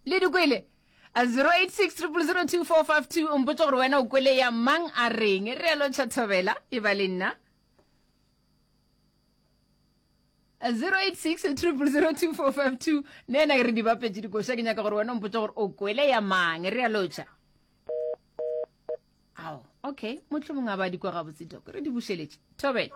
le di kwele 0860024452 mpotse gore wena o kwele ya mang a reng e realo tšhathobela e ba le nna 0860024452 ne ena ke re di bapetse dikoša ke nyaka gore wena mpotse gore o kwele ya mang e realo tša ao okay motlho mongwe a ba dikwa gabotse doko re di bušeletše thobela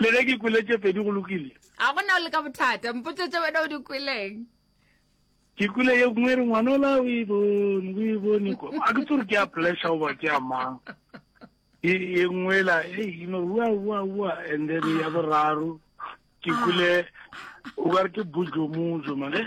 Le ge ke kwele tše pedi go lokile. A go na o le ka bothata? Mpotše tše wena o di kweleng. Ke kwele ye nngwe re ngwanola o e bone, o e bone ko. A ke tsore ke ya pleasure oba ke ya mang. E e nngwe la, hey, you know, wa wa wa and then ya ah. boraro ke kwele o ka re ke bojomojo mane.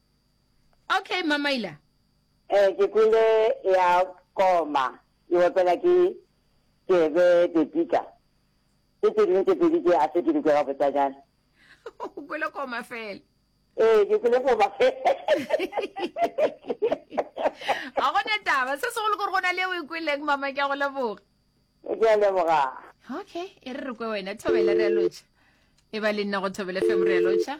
Okay, Mamaila. Eh, ke kwele ya koma, ke bapela ke Tebe Pepita. Ke tse dingwe tse pedi tse a se ke di kwega botsanyana. O kwele koma fela. Eh, ke kwele koma fela. Ga gone taba, se segolo gore go na le o e kweleng mama ke a go leboga. Ke a leboga. Okay, e re re kwe wena, thobela re a lotšha. E ba le nna go thobela fem re a lotšha.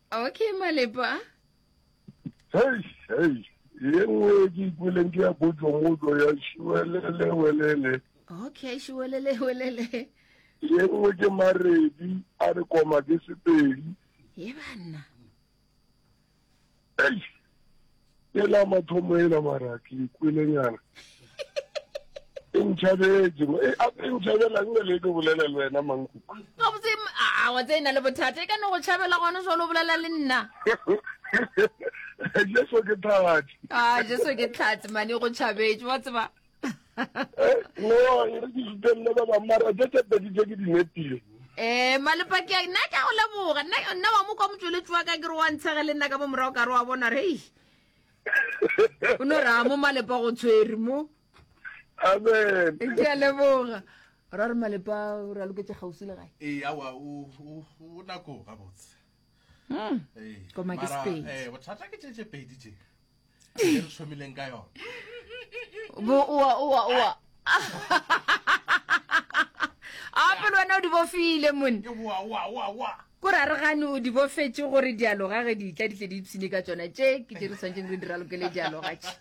Okay, Malepa. Hey, hey. Ye nngwe ke ikweleng ke ya potso-motso ya šiwelele-welele. Okay, šiwelele-welele. Ye nngwe ke maredi a re koma ke sepedi. Ye banna. Hey. Ela mathomo ela mara ke ikwele nyana. E ntšhabetše, e eh, ape e ntšhabela nne le ke bolele le wena mankuku. Ka botse a ah, wa tse ina le bothata e ka no go tšhabela gone so lo bolela le nna. Jesu ke tlhatsi. Ah, Jesu ke tlhatsi mane go tšhabetše wa tseba. eh, no re ke sutelele ba bangwe mara tse tse pedi tse ke di nepile ee eh, malepaki a nna ke a go leboga nna wa mo kwa motsweletsi wa ka ke re wa ntshege le nna ka mo morago ka re wa bona re ei o no raya mo malepa go tshwere mo amen ke a leboga ra re malepa o re a loketse gausi le gae ee awa o nako gabotse hmm. ee, koma ke sepedi eh, bothata ke tšetše pedi tše e re thomileng ka yona bo oa oa oa ape le wena o di bofile mone ke boa oa oa oa ko ra re gane o di bofetše gore dialoga ge di tla di tle di ipshine ka tsona tše ke tše re tshwanetseng re di ralokele dialoga tše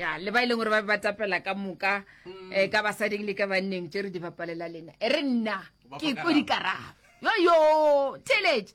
ya le ba e leng gore ba be ba tapela ka moka um ka basading le ka banneng tše re di bapalela lena e re nna ke ko dikarabo yoyo theletše